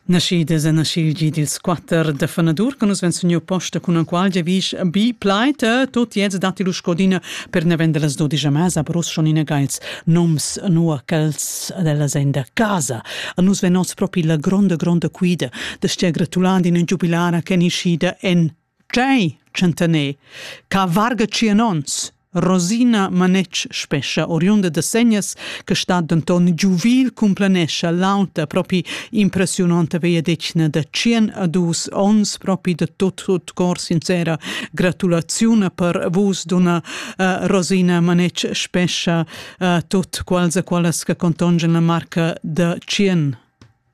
Naschidas e naschil gi dils quatter da fanadur che nus vein sogniu posta cun enqual giavisch bi plaid, tot jez datti lu scodina per naven dallas dodisch a mesa per uss schon ina geils noms nua ch'els dellas ein da casa. A nus vein oz propi la gronda gronda quida da stia gratulando in giubilara che ni schida en Tgei tschentaner ca varga tschien ons? Rosina Manetsch spescha oriunda da Segnas, che stat denton giuvil cumplanescha l'auta propi impressiononta vegliadetgna da tschien a dus ons propi da tot tut cor sincera gratulaziuna per vus donna uh, Rosina Manetsch spescha uh, tot quals e qualas che contongen la marca da tschien.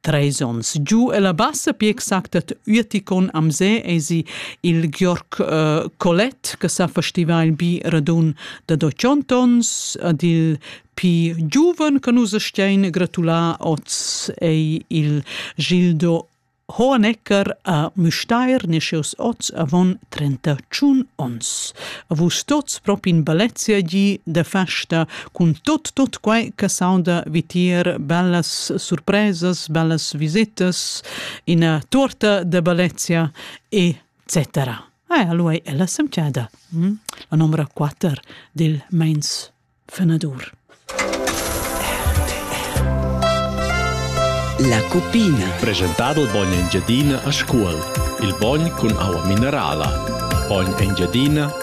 Treis onns giu ella bassa, pi exact ad Ueticon am se, esi il Georg uh, Collet che sa festiva il bi radun da 200 ons, ad il pi giuven che nus stein gratulà oz ei il Gildo Hohenecker a Müstair nescius oz avon 31 ons. A vus tots propi in balezia gi de festa cun tot tot quai che saunda vitier bellas surpresas, bellas visetas, ina torta de Balezia e cetera. Ah, allora è la semciada, hm? la numero 4 del Mainz Fenadur. La cupina. Presentato il bogn Engiadina a Scuol. Il bogn con aua minerala. Bogn Engiadina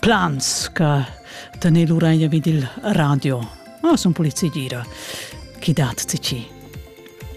plans che tener l'uraglia vid il radio. Oh, sun polizia gira. Chi dat ti ci?